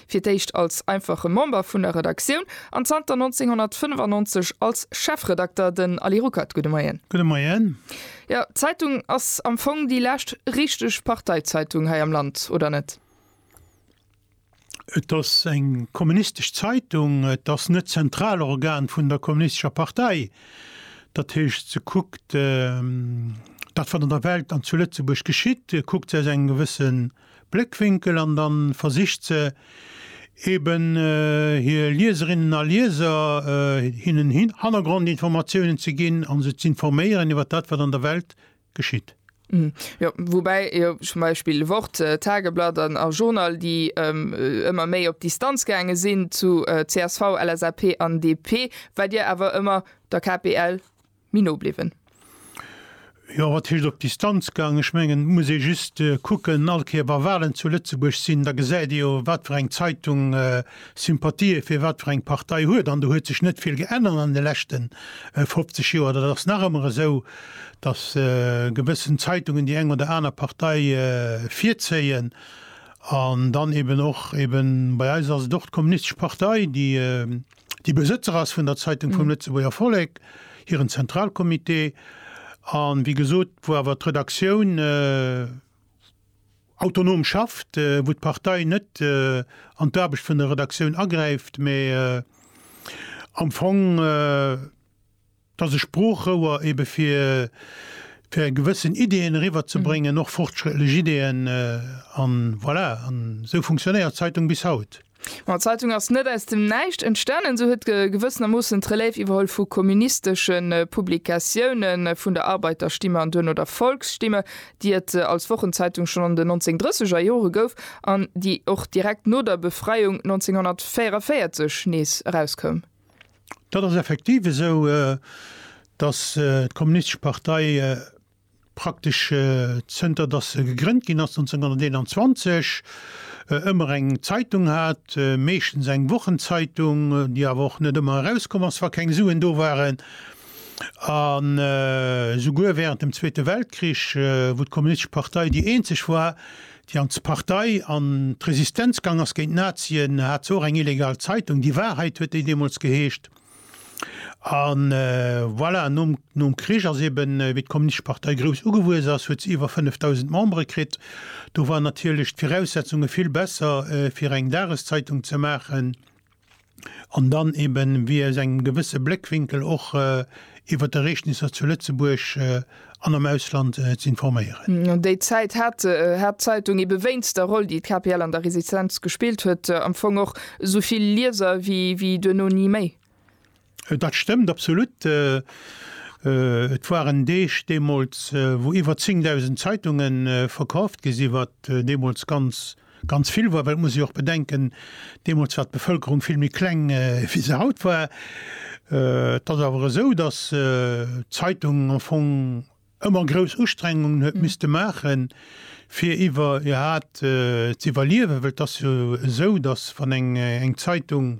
Fir d'éischt als einfache Member vun der Redaktioun an zanter 1995 als Chefredakter, den Ali Ruckert. Gudde Moien. Gudde Moien. Jo, d'Zeitung ass am Fong déi lescht richteg Parteizeitung hei am Land, oder net? Et ass eng kommunistesch Zeitung. Et ass net d'Zentralorgan vun der kommunistescher Partei. Dat heescht, se kuckt dat, wat an der Welt an zu Lëtzebuerg geschitt, kuckt se aus engem gewëssen. Bléckwinkel an da versicht se eben hir Lieserinnen a Lieser, hinnen Hannergrondinformatiounen ze ginn a se z'informéieren iwwer dat, wat an der Welt geschitt. Jo, woubäi jo zum Beispill Wort, Tageblatt a Journal, déi ëmmer méi op Distanz gaange sinn zu csv, LSAP an DP, wat Dir awer ëmmer der KPL. méi no bliwwen. Jo, wat heescht op Distanz gaangen? Ech mengen, et muss ee just kucken, all Kéier wa Walen zu Lëtzebuerg sinn, da gesäit ee jo, wat fir eng Zeitung Sympathië fir wat fir eng Partei huet. An do huet sech net vill geännert an de leschte 50 Joer. Dat ass nach ëmmer esou, datt gewëssen Zeitungen déi eng oder aner Partei virzéien. An dann eeben och, eeben bei eis ass et och d'Kommunistesch Partei, déi, déi Besëtzer ass vun der Zeitung vum Lëtzebuerger Vollek, hiren Zentralcomité an, wéi gesot, wou awer d'Redaktioun autonom schafft, wou d'Partei net an d'Aarbecht vun der Redaktioun agräift, mä am Fong, dass e Sproochrouer ebe fir fir gewëssen Ideeën eriwwer ze bréngen, och fortschrëttlech Ideeën, an voilà, an esou funktionéiert d'Zeitung bis haut. Bon, d'Zeitung ass net aus dem Näischt entstanen, se huet gewëssenermoossen d'Relève iwwerholl vu komministesche Publikatiounen, vun der Arbeiterstimme an duerno der Volksstimme, déi et als Wochenzeitung schonn an den 1930er Jore gouf an déi och direkt no der Befreiung 1944 nees erauskoum. Dat ass effektiv esou, dass d'Kommunistesch Partei praktesch zënter dass se gegrënnt ginn ass 1921 ëmmer eng Zeitung hat, meeschtens eng Wochenzeitung, déi awer och net ëmmer erauskomm ass, wa keng Suen do waren. An esouguer wärend dem Zweete Weltkrich, wou d'Kommunistesch Partei déi eenzeg war, déi an d'Partei an d'Resistenz gaang ass géint d'Nazien, hat se och eng illegal Zeitung, Die Wahrheit huet déi deemools geheescht. A voilà, nom Krich ass eben, wéi d'Kommunistesch Partei grouss ugewuess ass, huet se iwwer 5.000 Membere kritt. Do waren natierlech d'Viraussetzunge vill besser, fir eng Dageszeitung ze maachen. an dann eben wéi aus engem gewësse Bléckwinkel och iwwert d'Ereegnisser zu Lëtzebuerg an am Ausland z'informéieren. An déi Zäit hat d'Zeitung ebe wéinst der Roll, déi d'KPL an der Resistenz gespillt huet, am Fong och esou vill Lieser wéi duerno ni méi. Dat stëmmt absolut. Et waren Deeg deemools, wou iwwer 10.000 Zeitunge verkauft gi sinn, wat deemools ganz, ganz vill war. Well et muss ee jo och bedenken, deemools war d'Bevëlkerung vill méi kleng, wéi se haut war. Et ass awer esou, datt d'Zeitung am Fong ëmmer grouss Ustrengungen huet misste maachen, fir iwwer, jo, hat z'iwwerliewen. Well et ass jo esou, datt wann eng Zeitung,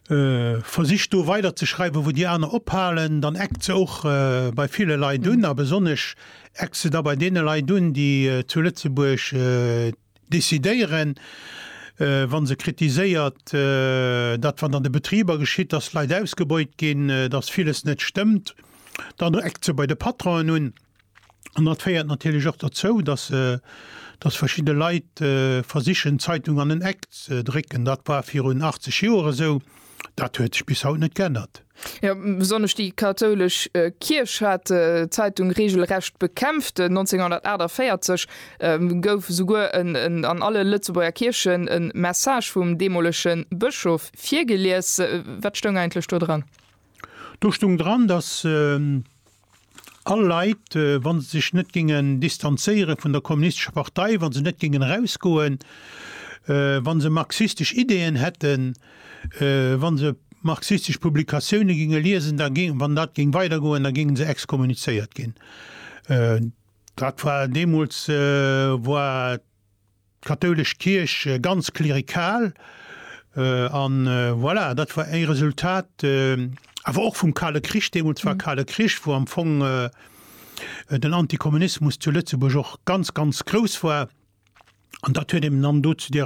Versicht do weider ze schreiwen, wou déi aner ophalen, dann eckt se och bei ville Leit un. A besonnesch eckt se da bei deene Leit un, déi zu Lëtzebuerg decidéieren, wa se kritiséiert, dat wat an de Betriber geschitt, dass d'Leit ausgebeut ginn, dass villes net stëmmt. Dann eckt se bei de Patronen un. An dat féiert natierlech och derzou, datt datt verschidde Leit versichen d'Zeitung an en Eck ze drécken. Dat war virun 80 Joer esou, dat huet sech bis haut net geännert. Jo, besonnesch déi kathoulesch Kierch hat d'Zeitung reegelrecht bekämpft. 1948 gouf esouguer en an alle Lëtzebuerger Kierchen e Message vum deemolege Bëschof virgelies. Wat stoung eigentlech do dran? Do stoung dran, datt. All Leit, wa se sech net géingen distanzéiere vun der Kommunistescher Partei, wa se net géingen erausgoen, wa se marxistesch Ideeën hätten, wa se marxistesch Publikatioune géinge liesen, da géing, wann dat géing weidergoen, da géinge se exkommunizéiert ginn. Dat war deemools war. D'kathoulesch Kierch ganz klerikal, an voilà, dat war ee Resultat awer och vum Kale Krich, deemools war Kale Krich, wou am Fong den Antikommunismus zu Lëtzebuerg och ganz, ganz grouss war, an dat huet eben dann dozou.